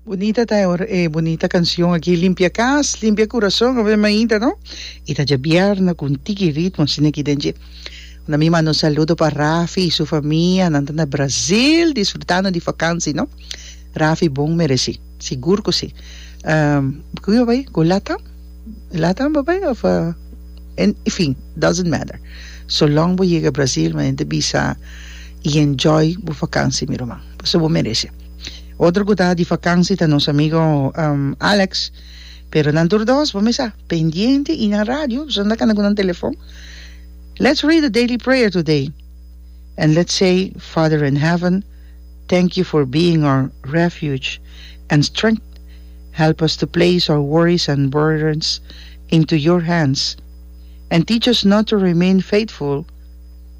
Bunita ta e bunita cancion aki limpia cas limpia curason ave mainta no y ta dje bierna cu un tiki ritmo asina aki den dje na mi manda un saludo pa Rafi y su famia nan ta na Brazil disfrutando di fakansi no Rafi bon mereci sigur cu si cu yo bay cu latam latam bo bay of en fin doesnt matter so long bo yega Brazil mi ta bisa y enjoy bo fakansi mi ruman. Pasobra bo merece. Otro cu ta di vakansi ta nos amigo Alex. Pero nan tur dos bo mester sa pendiente y na radio pasobra nan ta canta cu nan telefon. Let's read the daily prayer today and let's say, Father in heaven, thank you for being our refuge and strength. Help us to place our worries and burdens into your hands and teach us not to remain faithful.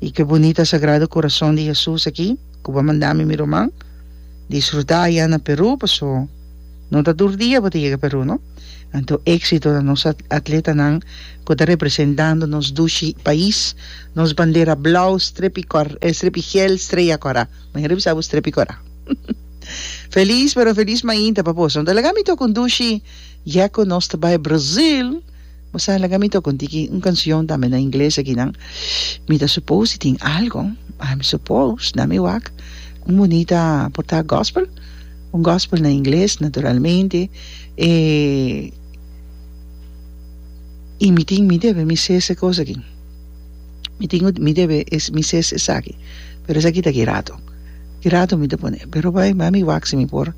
I ke bunita Sagrado Corazon di Hesus aki ku bo a manda mi, mi ruman, disfrutá ayá na Perú, paso no ta tur dia bo ta yega Perú no. Anto éksito na nos atletanan ku ta representando nos dushi pais, nos bandera blau strepi kòr strepi gel streya kòrá, mi a revisa bo strepi kòrá. Felis pero felis mainta papusa, no ta laga mi tok un dushi ya ku nos ta bai Brazil. Bo sa laga mi toca un tiki un cancion tambe na ingles akinan mi ta suppose di tin algo I'm suppose na mi wak un bonita por ta gospel un gospel na ingles naturalmente e y mi tin mi debe mi ses e cos aki mi tin mi debe mi ses esaki pero esaki ta girato girato mi ta pone pero bai bai mi wak si mi por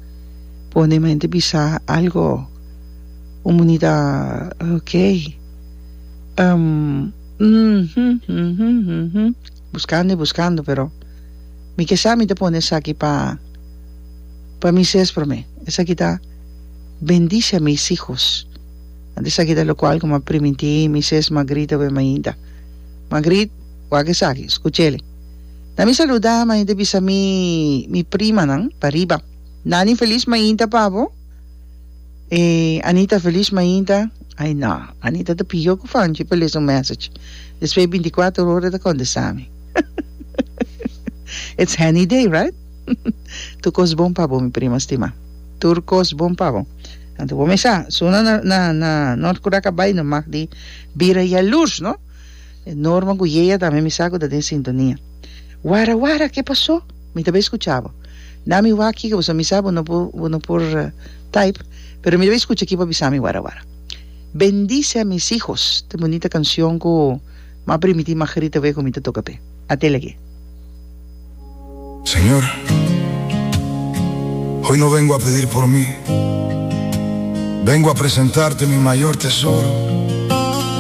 pone mi ta bisa algo Comunidad ok um uhmm buscando y buscando pero mi ke sa mi ta pone esaki pa pa mi ses prome esaki ta bendice a mis hijos want esaki ta locual como a primintí mi ses Magrit awe mainta Magrit wak esaki escuchele na mi saluda mainta bisa mi mi primanan pa riba Nani feliz mainta pa bo. E Anita Feliz mainta, ai no, Anita ta piho cu Fanchi pa lesa un message, despues di binticuater ora e ta contesta mi. It's Hanny Day, right? Tur cos bon pa bo mi prima stima. Tur cos bon pa bo. Anto bo me sa, zona na na na North Curaca Bay no mag di bira yalurs, no? Norman cu Yea tambe mi sa cu ta den sintonia. Wara wara, ke paso? Mi ta bai scucha bo. Na mi waki cu bo sa misa bo no por bo no por type pero mi ta bai scucha aki pa bisa mi wara wara. Bendice a mis hijos ta bunita cancion cu m'a primiti Margarita Wejo mi ta toca p'e. Ate lag'e. Señor, hoy no vengo a pedir por mi, vengo a presentarte mi mayor tesoro,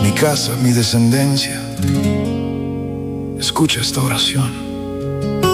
mi casa, mi descendencia. Escucha esta oracion.